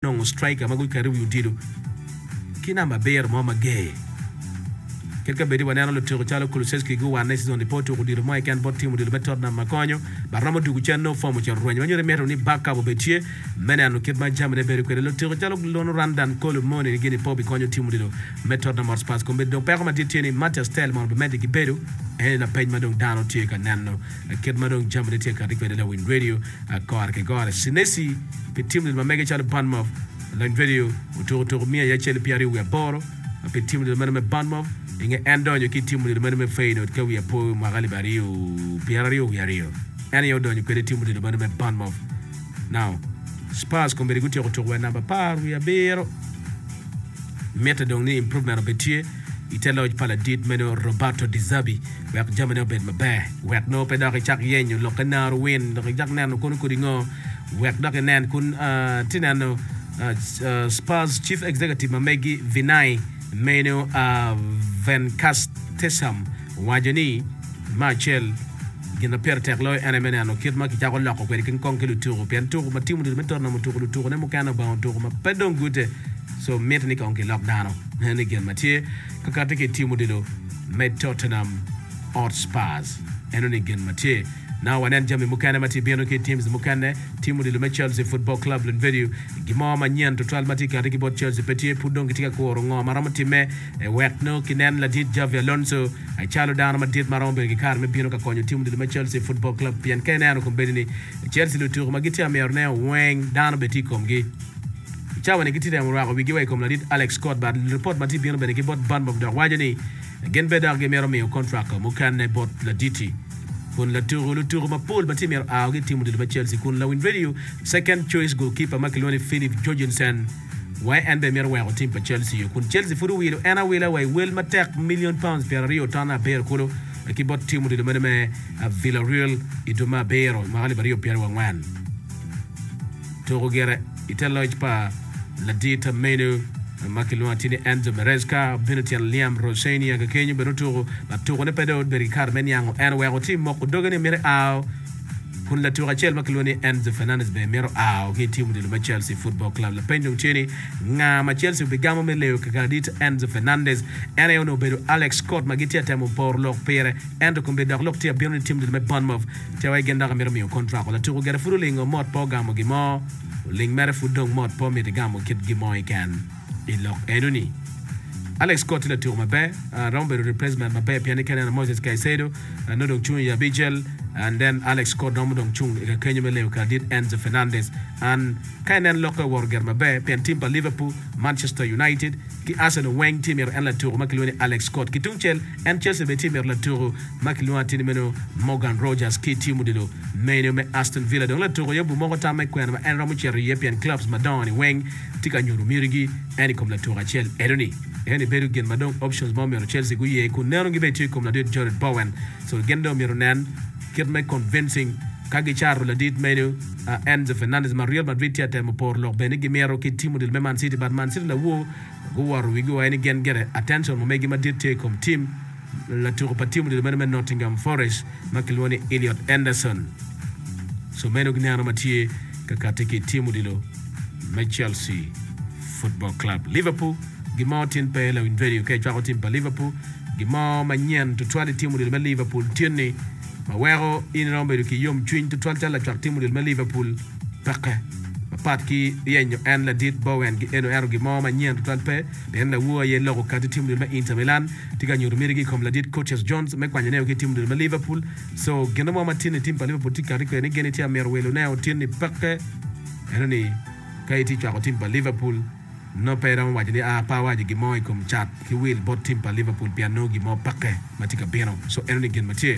nongo striker ma guketo i wi odilo ki namba abiro mo mager. Kit ka bedi waneno lutiko calo Kulusevski guwanne i cizon-ni pe otuko odilo mo keken bot tim odilo me Tottenham ma konyo ma romo tugo cen nongo fom ocito rwenyo ma nyuto ni mito ni backup obed tye me neno kit ma jamine bedo kwede. Lutiko calo Lonu Randal Kolo Muani ni gini pe obikonyo tim odilo me Tottenham Hotspurs kombeddi dong peko madit tye ni Matthias Tel mono bimedde ki bedo eni lapeny ma dong dano tye ka neno kit ma dong jamine tye kati kwede lawiny radio Agora ki gora, Senesi pi tim lel ma mege calo Bournemouth, Lony Radio otuko tuku miya iye acel pyeraryo wiye aboro pi tim lel meno me Bournemouth, inge en donyo ki tim lel meno me Feyenoord ka wiye apo i mwaka alip aryo pyeraryo wiye aryo en aye odonyo kwede tim lel meno me Bournemouth. Now Spurs kombeddi gutyeko tuku wa i namba apar wiye abiro. Mitte dong ni improvement obed tye i te loc pa ladit meno Roberto De Zerbi wek jamine obed maber wek nongo pe dok icak yenyo lok ka naro win dok icak neno kono kodi ngo wek dok inen kun ti neno Spurs chief executive ma megi Vinai meno Van Castesum Owaco ni, Me acel, gin ma pire tek loyo en aye me neno kit ma kicako loko kwede kin kong ki lutuku pien tuku ma tim otutu me Tottenham otuku lutukune mukene obongo otuku ma pe dong gute so mitte ni kong kilok dano ne ni gin ma tye ka katti ki i tim odilo me Tottenham Hotspurs eno ni gin ma tye na wanen jami mukene ma tye bino ki i teams mukene tim odilo me Chelsea Football Club lunvedio gimo manyen tutwal ma tye kati ki bot Chelsea pe tye pud dong gitye ka kuru ngo ma romo timme Ewek nongo kinen ladit Xabi Alonso calo dano madit ma romo bedo ki kare me bino ka konyo tim odilo me Chelsea Football Club pien ka ineno kombeddi ni Chelsea lutuku ma gitye amyero nen weng dano bene tye i komgi. I cawa ni gitye temo rwako wigi wa i kom ladit Alex Scott but luripot ma tye bino bene ki bot Bournemouth dok waco ni gin bene dok gimito miyo contract mukene bot laditi kun latuku lutuku mapol ma tye myero aogi i tim odilo me Chelsea kun lawiny radio second choice goalkeeper ma kilwongo ni Filip Jorgensen wai en bene mito weko tim pa Chelsea yo kun Chelsea pud owilo en awila wa i wel matek million pounds pyeraryo ton abiro kulu ki bot tim odilo mene me Villareal i dwe me abiro mwaka alip aryo pyeraryo angwen tuko gire i te loc pa ladita menu ma kilwongo atir ni Enzo Maresca obino tyen Liam Rosenior kekenyo bene otuko latukone pe dong obedo ki kare me niango en oweko tim moko doge ni mito ao kun latuko acel ma kilwongo ni Enzo Fernandez bene mito a ki i tim odilo me Chelsea Football Club. Lapeny dong tye ni, Nga ma Chelsea obigamo me leyo keken adit Enzo Fernandez? En aye onongo obedo Alex Scott ma gitye ka temo poro lok pire, ento kombe dok lok tye abino ni tim odilo me Bournemouth tye wai gin dok amito miyo kontrak wa. Latuko gire pud olingo mot pe ogamo gimo, oling mere pud dong mot pe omito igamo kit gin mo keken. I lok enoni, Alex Scott tye latuko maber. Uh, romo bedo replacement maber pien kene na Moses Caicedo uh, no dong cung i abicel and then Alex Scott romo dong cung i kakenyo me leyo karadit Enzo Fernandez. An ka inen lokke owoto gire maber pien tim pa Liverpool, Manchester United ki Arsenal weng tye mito en latuko ma kilwongo ni Alex Scott. Ki tungcel en Chelsea bene tye mito latuko ma kilwongo atir ni meno Morgan Rogers ki tim odilo meno me Aston Villa. Dong latuko aye obumoko tam me kwena ma en romo cito iye pien clubs madongo-ni weng tye ka nyuto miti-gi en i kom latuk acel eno-ni. En ni bedo gin ma dong options mo myero Chelsea guye kun neno gibedi tye i kom ladit Jarrod Bowen so gin dong myero nen kit me convincing ka gicato ladit meno Enzo Fernandez ma Real Madrid tye ka temo poro lok bene ni gimito ki timo deal me Man City but Man City lawor guwoto wigi wa eno gin gire attention mo megi madit tye i kom team Latuko pa tim odilo meno me Nottingham Forest ma kilwongo ni Elliot Anderson Tsemenyo gineno ma tye ka kati ki i tim odilo me Chelsea Football Club. Liverpool Gin mo tin pe lawiny redio ka icwako tim pa Liverpool. Gin mo manyen tutwal i tim odilo me Liverpool tye ni ma weko in iromo bedo ki yomcwiny tutwal calo lacwak tim odilo me Liverpool peke. Mapat ki ryenyo en ladit Bowen, eno ento gin mo manyen tutwal pe pien lawo aye loko kati tim odilo me Inter Milan tye ka nyuto mitigi i kom ladit Curtis Jones me kwanyo neo ki i tim odilo me Liverpool. Co gine mo ma tin ni tim pa Liverpool tye ka kati kwede ni gene tye ka mito wilo neo tin ni peke. Ento ni ka itye cwako tim pa Liverpool, nongo pe iromo waco ni aa pe awaco gin mo i kom cat ki wil bot tim pa Liverpool pien nongo gin mo peke ma tye ka bino. Co eno ni gin ma tye.